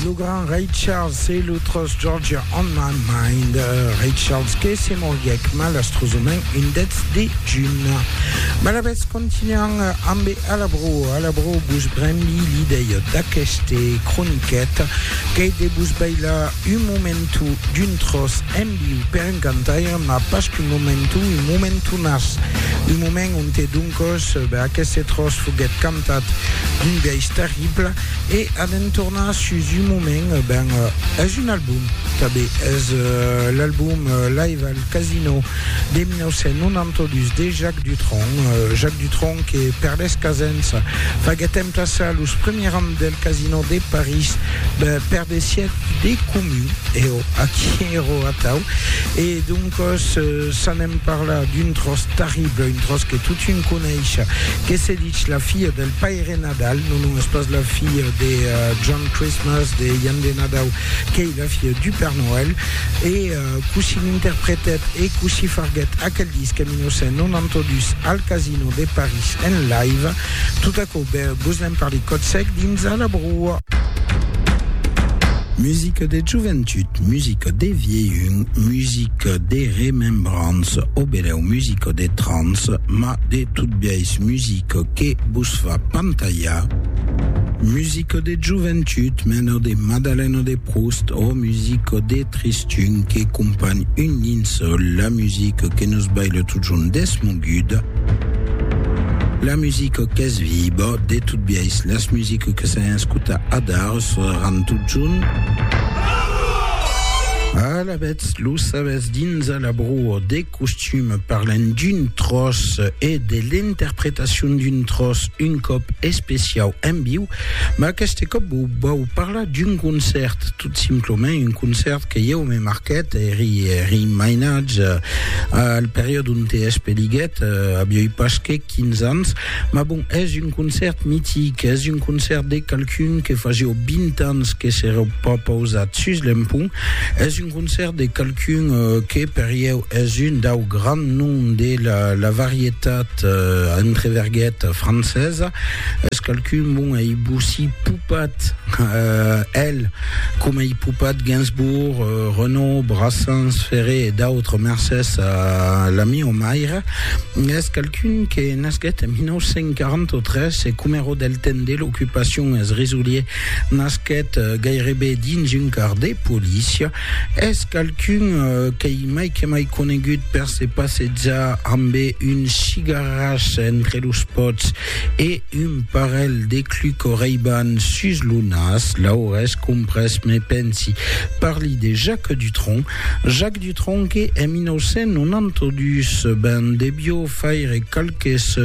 Lo grand Ray Charles e lo tròç Georgia on my mind. Ray Charles que se moriguèc malastrosament un 10 de junh. Malavetz continuam ambe a la bro. A la bro vos brembi l'idèia d'aqueste croniquet qu'ei de vos bailar un momentu d'un tròç en Li pèn cantaire, mas pas qu'un momenton, un momentonàs, un moment onte doncòs aqueste tròç foguèt cantat d'un biais terrible, e a d'entornar sus un moment, ben, es un album, tanben, es l'album Live al Casino de 1992 de Jacques Dutronc, Jacques Dutronc que per lèrs casèns faguèt emplaçar los premiers rams del Casino de París per de siècles de comun, e. Aquí ero atau, e doncòs s'anem parlar d'un tròç terrible, un tròç que totun coneisha, que se dich La filha del Paire Nadal, non, non, es pas la filha de John Christmas, de Jan de Nadau, qu'ei la filha du Père Noël, e cossí l'interpretèt e cossí farguèt aquel disc en 1992 al Casino de París en live, tot aquò. Vos ven per li còts sècs dins a la broa. Musica de joventut, musica de vielhun, musica de remembrança o benèu musica de trans, ma de tot biais musica que vos fa pantalhar. Musica de joventut, mena de Madalena de Proust o musica de tristun que companh un linçòl, la musica que nos baila totjorn deth moment. Guda. La musica qu'es viba, de tot biais las musica que s'an escuta adar sonaran totjorn. Alavetz, lo sabètz dins a la broa de costum parlem d'un tròç e de l'interpretacion d'un tròç un còp especiau en viu, ma aqueste còp vau parlar d'un concèrt. Simplement un concèrt que ieu me marquèt, eri eri mainatge al periòde onte espeliguèt, avioi pas que 15 ans, mas bon, es un concèrt mitic, es un concèrt de qualqu'un que fasió 20 ans que s'èra pas pausat sus l'empont, es un concèrt de qualqu'un que per ieu es un dau grands noms de la varietat, entre verguetas, francesa. Es qualqu'un bon ei bossí popat, el, coma ei popat Gainsbourg, Renaud, Brassens, Ferré e d'autres mercés a la mieu maire, es qualqu'un que nasquèt en 1943 e coma ro del temps de l'ocupacion es risolier nasquèt gairebe dins un car de polícia, es qualqu'un qu'ei mai que mai conegut per se passejar ambe un cigarràs entre los pòts E un parelh de clu correiban sus lo nas, l'aurès comprés, me pensi. Parli de Jacques Dutronc. Jacques Dutronc que, en 1992, ben debió faire qualques,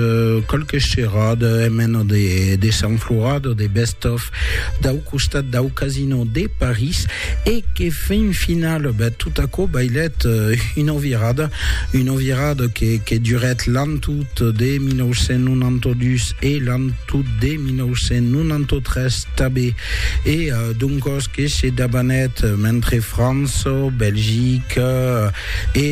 qualques cherades en mena de, de Sant Florat o de best-of, dau costat dau Casino de París e que fin final ben, tot aquò bailèt una virada, una virada que, que durèt l'an tot de 1992 e l'an tot de 1993 tanben e doncòs que se dabanèt mentre França, Belgica e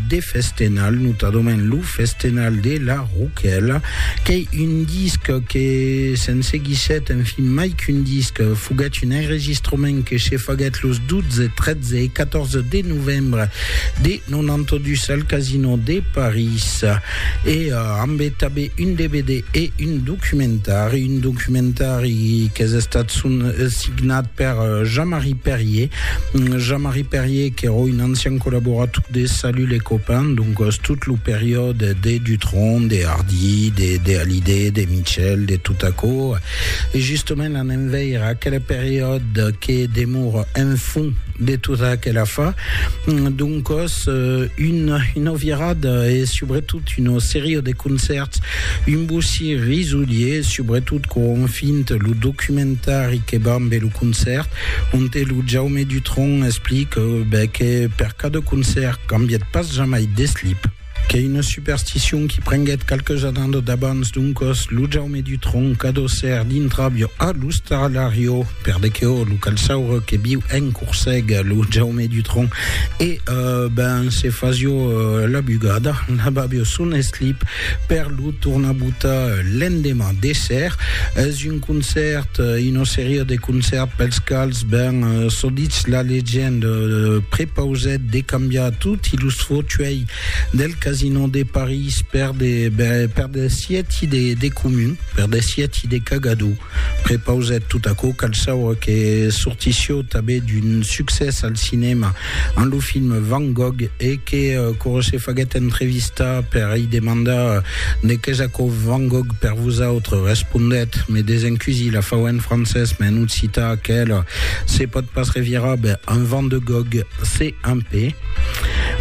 de festenal, notadament lo festenal de la Roquèla, Qu'ei un disc que se'n seguissèt, en fin, mai qu'un disc, foguèt un enregistrament que se faguèt los 12, 13 e 14 de novembre de 92 al Casino de París. E ambe tanbe un dvd e un documentari, un documentari qu'es estat signat per Jean-Marie Perrier, Jean-Marie Perrier qu'èra un ancian collaborator de Salut les copains, doncas tot lo periòde de de Dutron, de Hardy, de de Hallyday, de Mitchell, de tot aquò, e justament anem veire aquela periòde que demora en fond de tota aquela fa, doncòs un, una virada e subretot una seria de concèrts, un bossir risolier, subretot quan ont fint lo documentari que va ambe lo concèrt, Onte lo Jaume Dutronc explique ben que per cada concèrt cambièt pas jamai d'eslip. Qu'ei una supersticion qui prenguèt qualques annadas d'abans, doncas lo Jaume Dutronc adossèr d'intràvia a l'ostalarior, per de que ò lo calçaure que viu en Corseg, lo Jaume Dutronc, e ben se fasió la bugada, lavavió son eslip per lo tornar botar l'endemà de ser. Un concèrt, una seria de concèrts pels quals, ben, çò ditz la legenda, prepausèt de cambiar toti los fautuèi del Casino de París per de, ben, per de sièti de, de comun, per de sièti de cagador. Prepausèt tot aquò, cal saure que sortissió tanben d'un succès al cinèma En lo film Van Gogh e que Corot se faguèt entrevistar per i demandar ne qu'es aquò Van Gogh per vosautre, respondèt, me desencusi la fau en francés, me en occità aquela se pòt pas revirar, ben, un Van de Gogh, se un pe.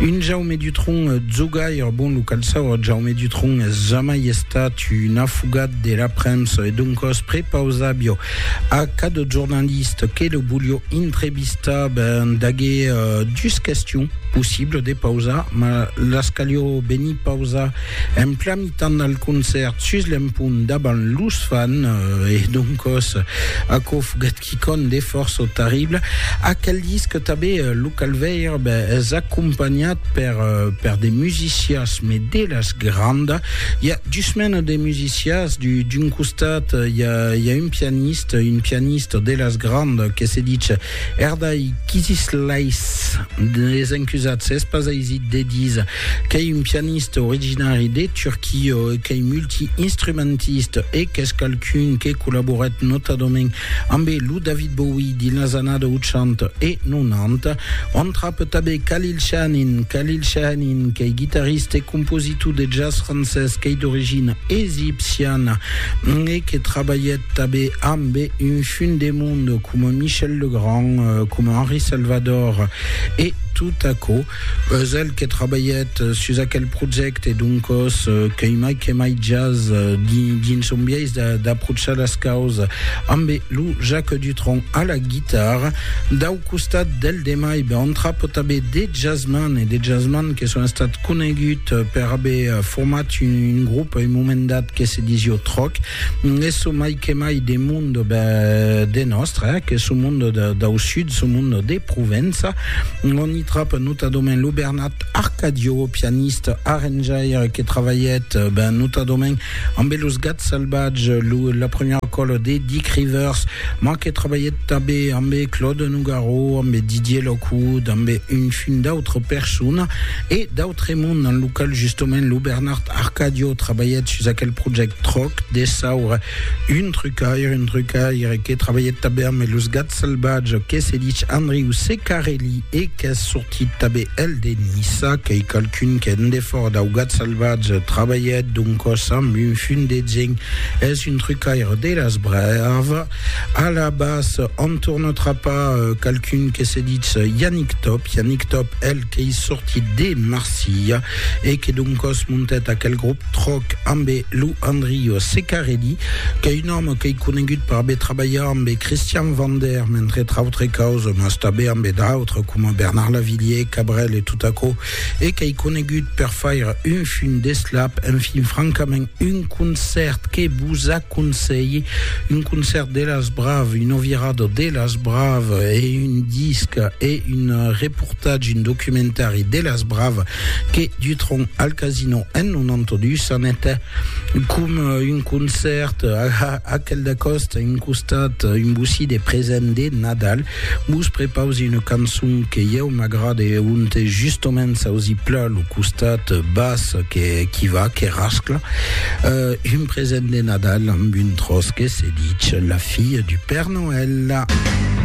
Un Jaume Dutronc jogaire, bon, lo cal saur, Jaume Dutronc es jamai estat un afugat de la premsa e doncòs prepausabio a cada jornaliste que lo volió intrevistar, Vista ben d'agé dus questions possibles de pausar, ma las calió benir pausar en plan mitan al concèrt sus l'empont davant los fan e doncos aquò foguèt quicòm de fòrça tarrible. Aquel disc tabé lo cal veir ben es acompanhat per per de musicias me de las grandas, i a dus menas de musicias, d'un costat i a un pianista, un pianista de las grandas que se ditz Erdai Kisislais des encusats es pas aisit de dis qu'ei un pianista originari de Turquia e qu'ei multi-instrumentista e qu'es qualqu'un que collaborèt notadament ambe lo David Bowie dins las annada 80 e 90. On trape tanben Khalil Shahanin, Khalil Shahanin qu'ei guitarista e compositor de jazz francés qu'ei d'origina egipciana e que trabalhèt Tanben ambe un fin de monde coma Michel Legrand, coma Henri Salvador e tot aquò. Eus el que trabalhèt sus aquel projècte, doncòs qu'ei mai que mai jazz dins son biais d'aprochar las causas. Ambe lo Jacques Dutronc a la guitarra, dau costat del demai ben entrapo tanben de jazzman e de jazzman que son estat conegut per aver format un grop a un moment dat que se disió Troc. Es çò mai que mai de monde de nòstre, eh? que çò monde dau sud, çò monde de Provença, on i tròp notadament lo Bernat Arcadio, pianiste, arranjaire, que travalhèt ben notadament ambe los Gats Salvatges, lo, la premiera còla de Dick Rivers, ma que travalhèt tabé ambe Claude Nougaro, ambe Didier Lockwood, ambe un fin d'autre persona, E d'autremond, en lo qual justement lo Bernard Arcadio trabalhèt sus aquel project tròc dessaure un trucaire, un trucaire que trabalhèt tanben amb los gats salvatges, que se dich Andriu Secarelli e qu'es sortit tanben el de Niça, qu'ei qualqu'un qu'en defòrt dau gat salvatge trabalhèt d'un còs amb un fum de geng, es un trucaire de las braves. A la bas, on torna trapar euh, qualqu'un que se ditz euh, Yannick Top, Yannick Top, el qu'ei sortit de Marsilha e que d'un cos montet aquel grup Troc ambe lo Andrio Secarelli, qu'ei un òme qu'ei conegut per aver trabalhat ambe Christian Vander, mentre tr'autre causes, mas tanben ambe d'autres, coma Bernard Lavillier, Cabrel e tot aquò, e qu'ei conegut per faire un fum d'eslap, enfin francament un concèrt que vos aconselhi, un concèrt de las braves, un ovirado de las braves e un disc e un reportatge, un documentari de las braves que Dutron al Casino en 92 anèt com un concèrt a aquel de costa, un costat, un bocí de present de Nadal. Vos prepausi una cançon que ieu m'agrade e onte justement s'ausi plan lo costat bas que qui va, que rascla. Uh, un present de Nadal amb un tros que se ditz La fille du Père Noël.